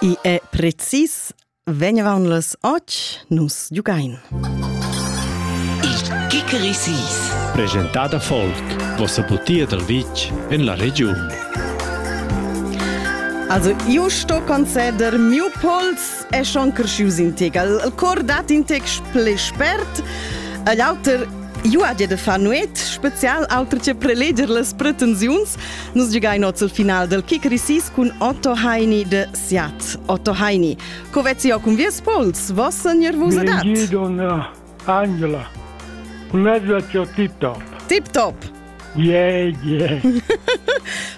I è precis vegnavan las och nus giugain. Il Kikerisis. Presentada folk, vossa butia dal vitg en la regiun. Also, io sto conceder miu pols è schon crescius in tegal. Il cor dat in tec ple spert. L'auter Juadia de far nuet, spezial auter che preleger las pretensiuns, nus giugain oz il final del kick risis cun Otto Heini de Siat. Otto Heini, co vezzi ho cun vies pols, vos segner vus adat? Don Angela, un mezzo tip top. Tip top! Yeah, yeah.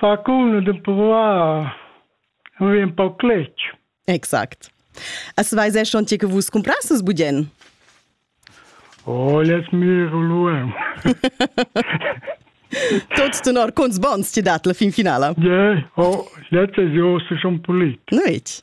Fa cun d'empruar un vin un pau cletg. Exact. As vais er schon che vus comprasses budien? Oh, les mir luem. Tot tenor, cons bons ti dat la fin finala? Yeah, oh, letztes Jahr ist schon polit. Nicht?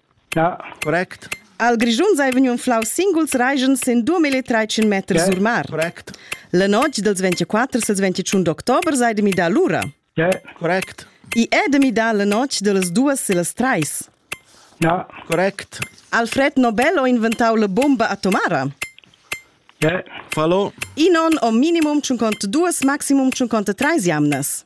Correct. Al Grischun sei vegniu unflau singuls reigens sin 2300 meters yeah, sur mar. Correct. La notg dels 24 als 21 d'october sei de midar l'ura. Yeah, correct. I è de midar la notg de les duas e les treis. Ja, correct. Alfred Nobel ho inventau la bomba atomara. Yeah, fallo. Inon o minimum 52, maximum 53 jamnas.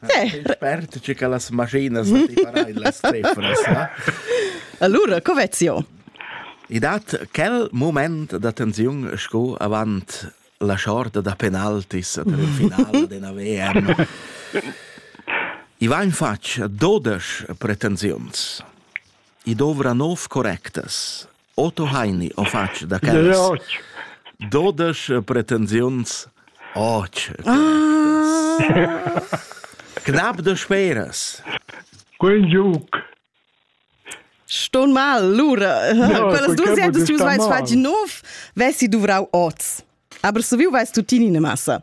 Expert, che las machinas las stefras. Allora, Covezio. I dat quel moment da tensiun sco avant la shorta da penaltis del finale della VM. I vain fatg 12 pretensiuns. I dovra 9 correctas. Otto Heini o fatg da quellas? Dodesch pretensiuns. Och. Knap de speras. Quel giuc. Ston mal, lura. No, Quellas dus jägst du vais fatg nov, wessi duvrau oz. Aber so wie weißt du Tini ne Massa?